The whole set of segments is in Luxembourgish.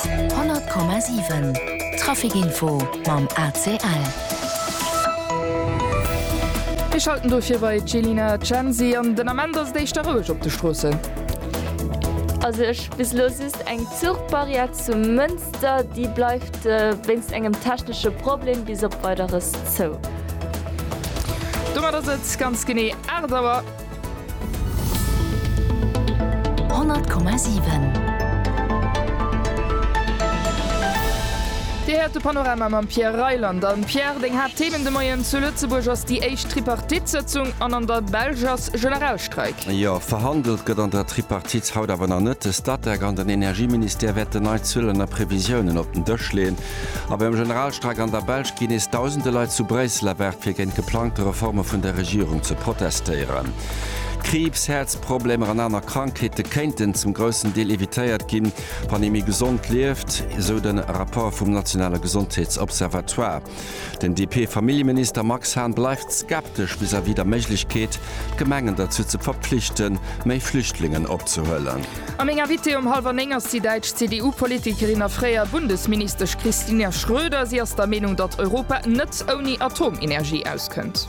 100,7 Traficinfo mam ACL. Mir schalten dofir bei d'Jelina Censi an. Den Ament ass et éischter roueg op de Stroossen. A sech bis elo just eng Zuchbarrière zu Mënster, déi bleift wéinst engem technesche Problem bis op Weideres zou. Domat ass et ganz genee 8 Auer. 100,7. Dir héiert de Panorama mam Pierre Reyland. A Pierre, deng Haaptthemen de Moien, Zu Lëtzebuerg ass déi éischt Tripartite-Sëtzung an an der Belsch ass Generalstreik. Jo, verhandelt gëtt an der Tripartite haut awer nach net. De Statec an den Energieministère wäerten nei Zuelen a Previsiounen op den Dësch leeën. A beim Generalstreik an der Belsch ginn nees Dausende Leit zu Bréissel erwaart, fir géint geplangte Reforme vun der Regierung ze protestéieren. Kriibs, Häerzproblemer an aner Krankheete kéinten zum groussen Deel evitéiert ginn, wann ee méi gesond lieft, esou de Rapport vum nationale Gesondheetsobservatoire. Den DP-Familljeminister Max Hahn bleift skeptesch vis-à-vis der Méiglechkeet, d'Gemengen derzou ze verpflichten, méi Flüchtlingen opzehuelen. A meng Invitée um hallwer néng ass déi däitsch CDU-Politikerin a fréier Bundesministesch Christina Schroeder. Si ass der Meenung, datt Europa net ouni Atomenergie auskënnt.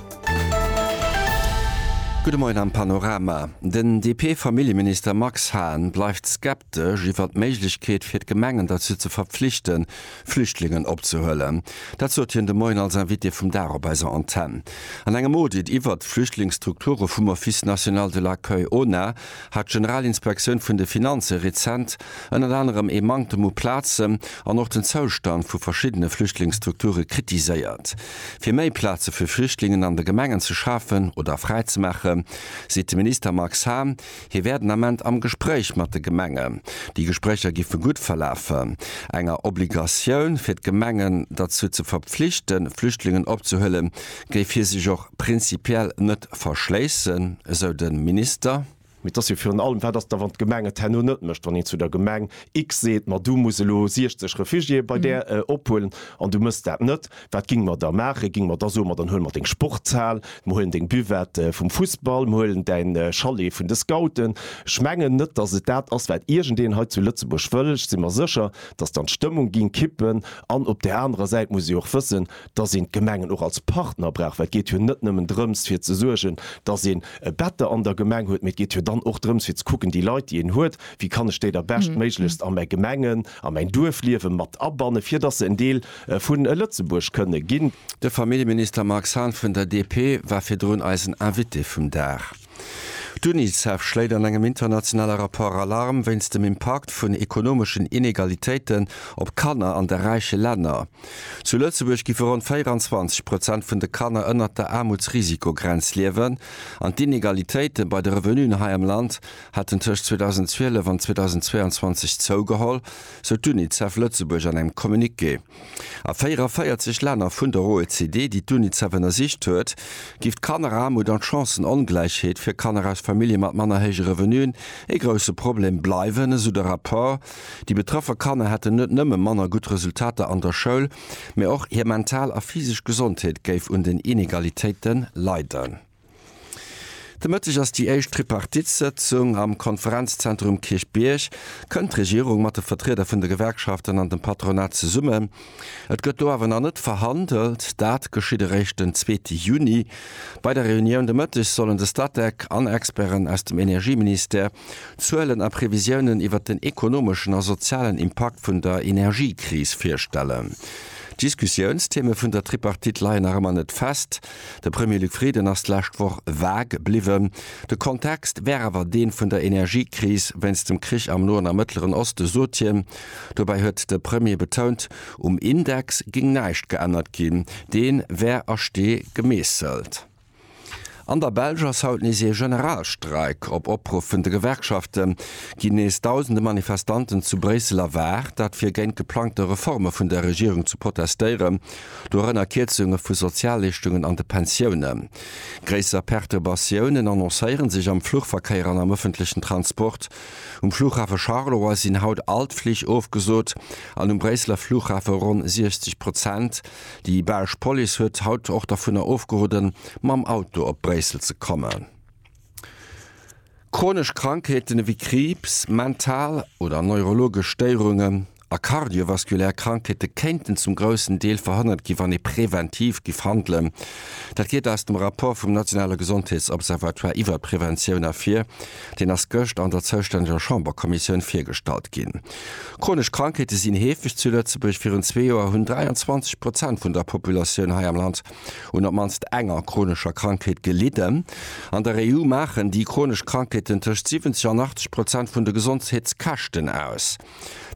Gudde Moien am Panorama. Den DP-Familljeminister Max Hahn bleift skeptesch iwwer d'Méiglechkeet fir d'Gemengen derzou ze verpflichten, Flüchtlingen opzehuelen. Dat sot hien de Moien als Invité vum Dag op eiser Antenn. An engem Audit iwwert d'Flüchtlingsstrukture vum Office national de l'accueil, ONA, hat d'Generalinspektioun vun de Finanze rezent ënnert anerem ee Manktem u Plazen an och den Zoustand vu verschiddene Flüchtlingsstrukture kritiséiert. Fir méi Plaze fir Flüchtlingen an de Gemengen ze schafen oder fräizemaache seet de Minister Max Hahn, hie wär den Ament am Gespréich mat de Gemengen. Déi Gespréicher giffe gutt verlafen. Enger Obligatioun fir d'Gemengen derzou ze verpflichten, Flüchtlingen opzehuelen, géif hie sech och prinzipiell net verschléissen, esou de Minister. Mee et ass jo virun allem, Wat ass da, wann d'Gemeng et herno net mécht? Wann een zu der Gemeng X seet, Ma du muss elo 60 Refugiéeë bei där ophuelen, an du méchs dat net, wat ginge mer da maachen? Ginge mer da soen, Ma dann huele mer deng Sportshal, mer huelen deng Buvette vum Fussball, mer huelen däin Chalet vun de Scouten? Ech mengen net, datt et dat ass, wat iergendeen hei zu Lëtzebuerg wëll. Ech si mer sécher, datt dann d'Stëmmung géing kippen. An op där anerer Säit muss ee och wëssen, dass een d'Gemengen och als Partner brauch, well et geet jo net nëmmen drëms fir ze suergen, dass een e Bätter an der Gemeng huet, mee et geet jo dann och drëms fir ze kucken, déi Leit déi een huet, wéi kann ech déi da beschtméiglechst a mäi Gemengen, a mäin Duerfliewe mat abannen, fir dass se en Deel vu Lëtzebuerg kënne ginn. De Familljeminister Marc Hahn vun der DP war virdrun eisen Invité vum Dag. D'Unicef schléit an engem internationale Rapport Alarm wéinst dem Impakt vun ekonomeschen Inegalitéiten op Kanner an de räiche Länner. Zu Lëtzebuerg giffe ronn 24 Prozent vun de Kanner ënnert der Aarmutsrisikogrenz liewen an d'Inegalitéite bei de Revenuen hei am Land hätten tëscht 2012 an 2022 zougeholl, sou d'Unicef Lëtzebuerg an engem Communiqué. A 44 Länner vun der OECD, déi d'UNICEF ënnersicht huet, géif d'Kanneraarmut an d'Chancen-Ongläichheet fir Kanner aus Famillje mat manner héije Revenuen ee grousse Problem bleiwen, esou de Rapport. Déi betrëffe Kanner hätten net nëmme manner gutt Resultater an der Schoul, mee och hir mental a physesch Gesondheet géif un den Inegalitéite leiden. De Mëtteg ass déi éischt Tripartite-Sëtzung am Konferenzzentrum Kierchbierg. Kënnt d'Regierung mat de Vertrieder vun de Gewerkschaften an dem Patronat zesummen? Et gëtt do awer nach net verhandelt. Dat geschitt eréischt den zweete Juni. Bei der Reunioun de Mëtteg sollen de Statec an Experten aus dem Energieministère Zuelen a Previsiounen iwwer den ekonomeschen a sozialen Impakt vun der Energiekris virstellen. D'Diskussiounstheme vun der Tripartite leien nach ëmmer net fest. De Premier Luc Frieden ass d'lescht Woch vague bliwwen. De Kontext wär awer dee vun der Energiekris wéinst dem Krich am Noen a Mëttleren Osten, sot hien. Dobäi huet de Premier betount, um Index géing näischt geännert ginn, dee wär a Stee gemeesselt. An der Belsch ass haut nees ee Generalstreik. Op Opruff vun de Gewerkschafte ginn nees dausende Manifestanten zu Bréissel erwaart. Dat fir géint geplangte Reforme vun der Regierung ze protestéieren. Dorënner Kierzunge vu Sozialleeschtungen an de Pensioune. Gréisser Perturbatiounen annoncéiere sech am Fluchverkéier an am ëffentlechen Transport. Um Flughafe Charleroi sinn haut all d'Flich ofgesot an um Bréisseler Flughafe ronn 60 Prozent. Déi belsch Police huet haut och dervunner ofgeroden, mam Auto op Bréissel ze kommen. Chronesch Krankheeten ewéi Kriibs, mental oder neurologesch Stéierungen a kardiovaskulär Krankheete kéinten zum groussen Deel verhënnert ginn, wann ee preventiv giff handelen. Dat geet aus dem Rapport vum nationale Gesondheetsobservatoire iwwert d'Preventioun ervir. Deen ass gëscht an der zoustänneger Chamberkommissioun virgestallt ginn. Chronesch Krankheete sinn heefeg zu Lëtzebuerg. Virun zwee Joer hunn 23 Prozent vun der Populatioun hei am Land un op mannst enger chronescher Krankheet gelidden. An der EU maachen déi chronesch Krankheeten tëscht 70 an 80 Prozent vun de Gesondheetskäschten aus.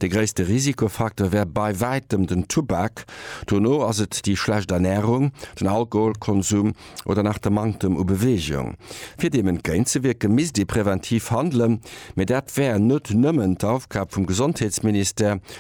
De gréisste Risikofaktor wär bei wäitem den Tubak, dono ass et déi schlecht Ernärung, den Alkoholkonsum oder nach de Manktem u Beweegung. Fir deem entgéintzewierke misst ee preventiv handelen, mee dat wär net nëmmen d'Aufgab vum Gesondheetsministère,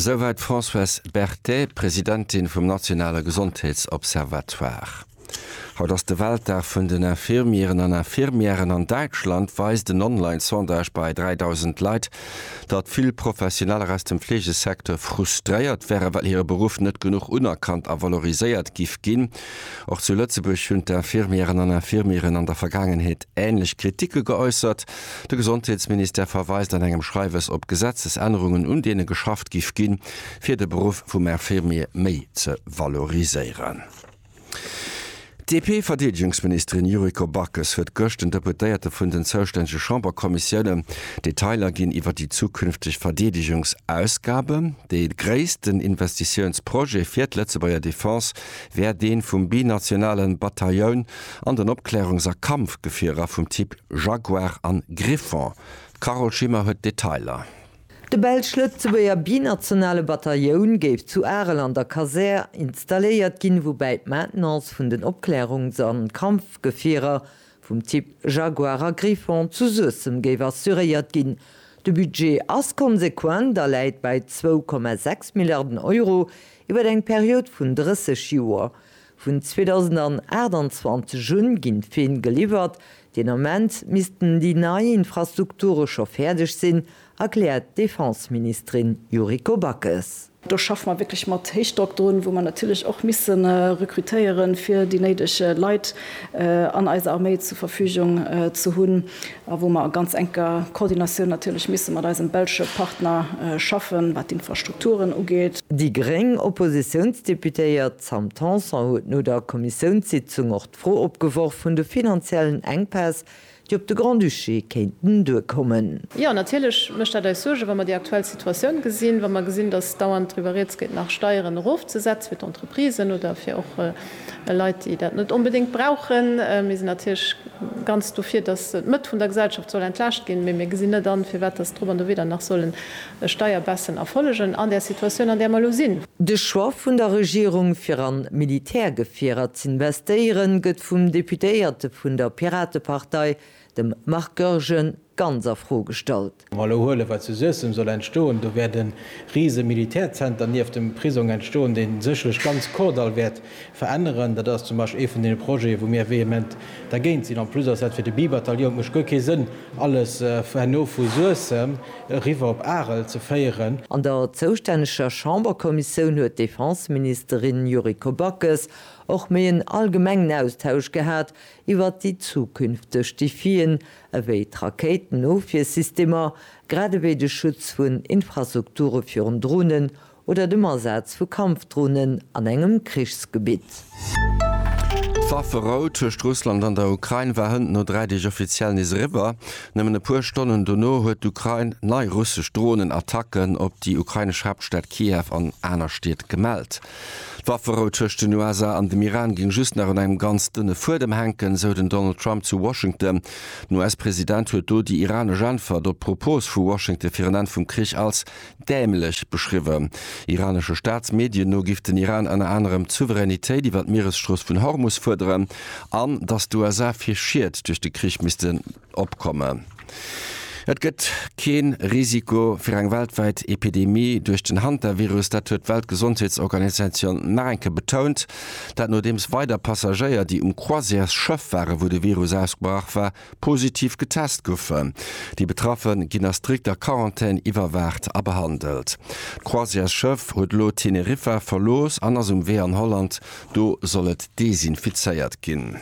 Souwäit d'Françoise Berthet, Presidentin vum nationale Gesondheetsobservatoire. Haut ass de Weltdag vun den Infirmieren an Infirmièren. An Däitschland weist en Online-Sondage bei 3.000 Leit, datt vill Professioneller aus dem Fleegesecteur frustréiert wären, well hire Beruff net genuch unerkannt a valoriséiert giff ginn. Och zu Lëtzebuerg hunn d'Infirmieren an Infirmieren an der Vergaangenheet änlech Kritike geäussert. De Gesondheetsministère verweist an engem Schreiwes op Gesetzesännerungen, un deene geschafft giff ginn, fir de Beruff vum Infirmier méi ze valoriséieren. D'DP-Verdeedegungsministerin Yuriko Backes huet gëscht den Deputéierte vun den zoustännege Chamberkommissiounen Detailer ginn iwwer déi zukünfteg Verdeedegungsausgaben. Dee gréissten Investitiounsprojet fir d'Lëtzebuerger Defense wär dee vum binationale Batailloun an den Opklärungs a Kampfgefierer vum Typ Jaguar an Griffon. D'Carole Schimmer huet d'Detailer. De belsch-lëtzebuerger binationale Batailloun géif zu Arel an der Kasär installéiert ginn, woubäi d'Maintenance vun den Opklärungs an Kampfgefierer vum Typ Jaguar a Griffon zu Suessem géif assuréiert ginn. De Budget ass konsequent a läit bei zwou Komma sechs Milliarden Euro iwwer eng Period vun 30 Joer. Vun 2028 un ginn d'Feen geliwwert. Deen Ament missten déi nei Infrastrukture scho fäerdeg sinn, erkläert d'Defenseministerin Yuriko Backes. Do schaffe mer wierklech mat Héichdrock drun, wou mer natierlech och misse rekrutéiere fir déi néideg Leit an eiser Arméi zur Verfügung ze hunn a wou mer a ganz enker Koordinatioun natierlech misse mat eisem belsche Partner schaffen, wat d'Infrastrukturen ugeet. Déi gréng Oppositiounsdeputéiert D'Sam Tanson huet no der Kommissiounssitzung och d'Fro opgeworf vun de finanziellen Enkpäss, déi op de Grand-Duché kéinten duerkommen. Jo, natierlech mécht dat eis Suergen, wa mer déi aktuell Situatioun gesinn, wa mer gesinn, datt dauernd driwwer rieds geet, nach Steieren erofzesetzen fir d'Entreprisen oder fir och Leit, déi dat net onbedéngt brauchen. Mir sinn natierlech ganz dofir, datt d'Mëtt vun der Gesellschaft soll entlaascht ginn, mee mir gesinn net an, firwat datt drop an dowéi dann nach sollen Ech steier bessen Erfollegen an där Situatioun, an där mer elo sinn. De Choix vun der Regierung fir an Militärgefierer z'investéieren, gëtt vum Deputéierte vun der Piratepartei, dem Marc Goergen, ganz a Fro gestallt. Wa mer elo huelen, wat zu Suessem soll entstoen, do wäert e rise Militärzenter nieft dem Prisong entstoen, dee sécherlech ganz Kordall wäert Veränneren. Dat ass zum Beispill ee vun deene Projete, wou mir vehement dergéint sinn. En plus ass dat fir de Bi-Bataillon, et mécht guer kee Sënn, alles herno vu Suessem eriwwer op Arel ze féieren. An der zoustänneger Chamberkommissioun huet d'Defenseministerin Yuriko Backes och méi en allgemengen Austausch gehat iwwert déi zukünfteg Defien, ewéi d'Rakéitenofwiersystemer, grad ewéi de Schutz vun Infrastrukture virun Dronen oder dem Asaz vu Kampfdronen an engem Krichsgebitt. D'Wafferou tëscht Russland an der Ukrain war hënt no dräi Deeg offiziell nees eriwwer. Nëmmen e puer Stonnen dono huet d'Ukrain nei russesch Dronenattacken op déi ukrainesch Haaptstad Kiew an aner Stied gemellt. D'Wafferou tëscht den USA an dem Iran géing just nach un engem ganz dënne Fuedem hänken, esou den Donald Trump zu Washington. Den US-President huet do déi iranesch Äntwert op d'Propos vu Washington fir en Enn vum Krich als dämlech beschriwwen. Iranesche Staatsmedien no giff den Iran ënner anerem d'Souveränitéit iwwer d'Mieresstrooss vun Hormus fuerderen an datt d'USA fir Schied duerch de Krich missten opkommen. Et gëtt kee Risiko fir eng weltwäit Epidemie duerch den Hantavirus, dat huet d'Weltgesondheetsorganisatioun nach eng Kéier betount. Dat nodeems weider Passagéier, déi um Croisièresschëff waren, wou de Virus ausgebrach war, positiv getest goufen. Déi Betraffe ginn a strikter Quarantän iwwerwaacht a behandelt. D'Croisièresschëff huet elo Teneriffa verlooss an ass um Wee an Holland, do soll et desinfizéiert ginn.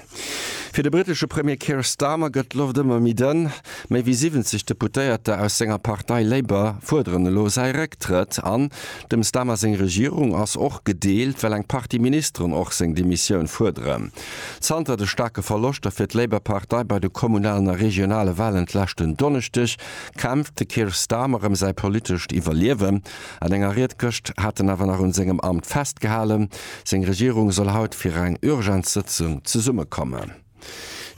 Fir de britesche Premier Keir Starmer gëtt d'Loft ëmmer méi dënn. Méi wéi 70 Deputéierter aus senger Partei Labour fuerderen elo säi Récktrëtt. An dem Starmer seng Regierung ass och gedeelt, well eng Partie Ministeren och seng Demissioun fuerderen. Zanter de staarke Verloschter fir d'Labour-Partei bei de kommunalen a regionale Walen d'leschten Donneschdeg, kämpft de Keir Starmer ëm säi politescht Iwwerliewen. An enger Ried gëscht hat en awer nach un sengem Amt festgehalen. Seng Regierung soll haut fir eng Urgenzsëtzung zesummekommen.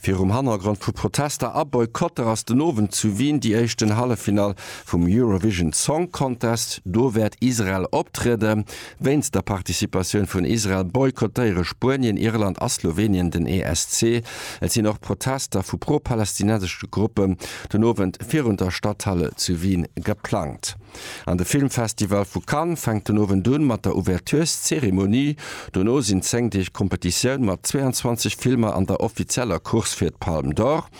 Virum Hannergrond vu Protester a Boykotter ass den Owend zu Wien déi éischten Halleffinall vum Eurovision Song Contest. Do wäert Israel optrieden. Wéinst der Participatioun vun Israel boykottéiere Spuenien, Irland a Slowenien den ESC. Et sinn och Protester vu pro-palästinensesche Gruppen den Owend virun der Stadthalle zu Wien geplangt. An de Filmfestival vu Cannes fänkt den Owend un mat der Ouvertureszeremonie. Dono sinn 10 Deeg Competitioun mat 22 Filmer an der offizieller Course fir d'Palme d'Or.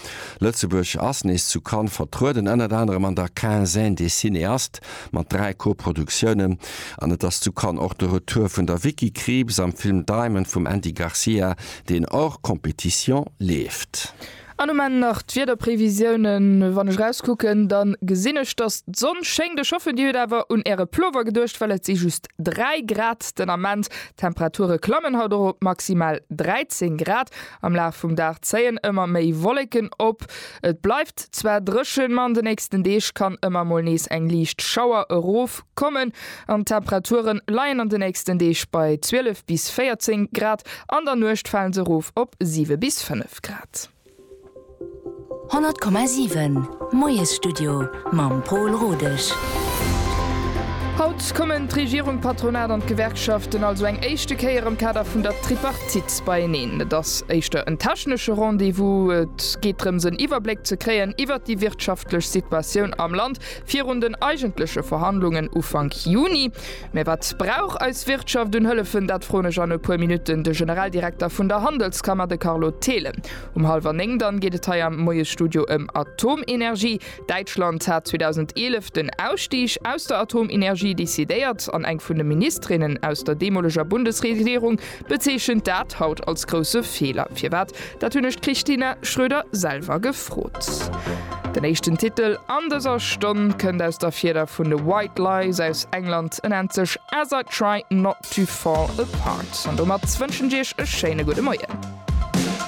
Lëtzebuerg ass nees zu Cannes vertrueden, ënnert anerem an der Quinzaine des cinéastes mat dräi Koproduktiounen. An et ass zu Cannes och de Retour vun der Vicky Krieps am Film Diamond vum Andy Garcia, deen hors compétition leeft. An um Enn nach d'Wiederprévisiounen, Wann ech erauskucken, da gesinn ech, dass d'Sonn schéngt. Ech hoffen, Dir hutt awer un Äre Plover geduecht, well et si just 3 Grad den Ament. D'Temperature klammen haut och op maximal 13 Grad. Am Laf vum Dag zéien ëmmer méi Wolleken op. Et bleift zwar dréchen, ma an de nächsten Deeg kann ëmmer mol nees eng liicht Schauer erof kommen an d'Temperature leien an de nächsten Deeg bei 12 bis 14 Grad. An der Nuecht fale se erof op 7 bis 5 Grad. 100,7 Moiesstudio mam Pol Rodesch. Haut kommen d'Regierung, d'Patronat an d'Gewerkschaften also eng éischte Kéier am Kader vun der Tripartite beieneen. Et ass éischter en technesche Rendez-vous. Et geet drëms en Iwwerbléck ze kréien iwwert déi wirtschaftlech Situatioun am Land virun den eigentleche Verhandlungen Ufank Juni. Mä wat brauch eis Wirtschaft un Hëllefen? Dat froen ech an e puer Minutten de Generaldirekter vun der Handelskammer, de Carlo Thelen. Um hallwer néng dann geet et hei am Moiesstudio ëm Atomenergie. Däitschland hat 2011 den Ausstig aus der Atomenergie decidéiert an eng vun de Ministerinnen aus der deemoleger Bundesregierung bezeechent dat haut als grousse Feeler. Firwat? Dat hunn ech d'Christina Schroeder selwer gefrot. Den éischten Titel an dëser Stonn kënnt aus der Fieder vun de White Lies aus England. En nennt sech As I Try Not To Fall Apart. An domat wënschen ech iech e schéine gudde Moien.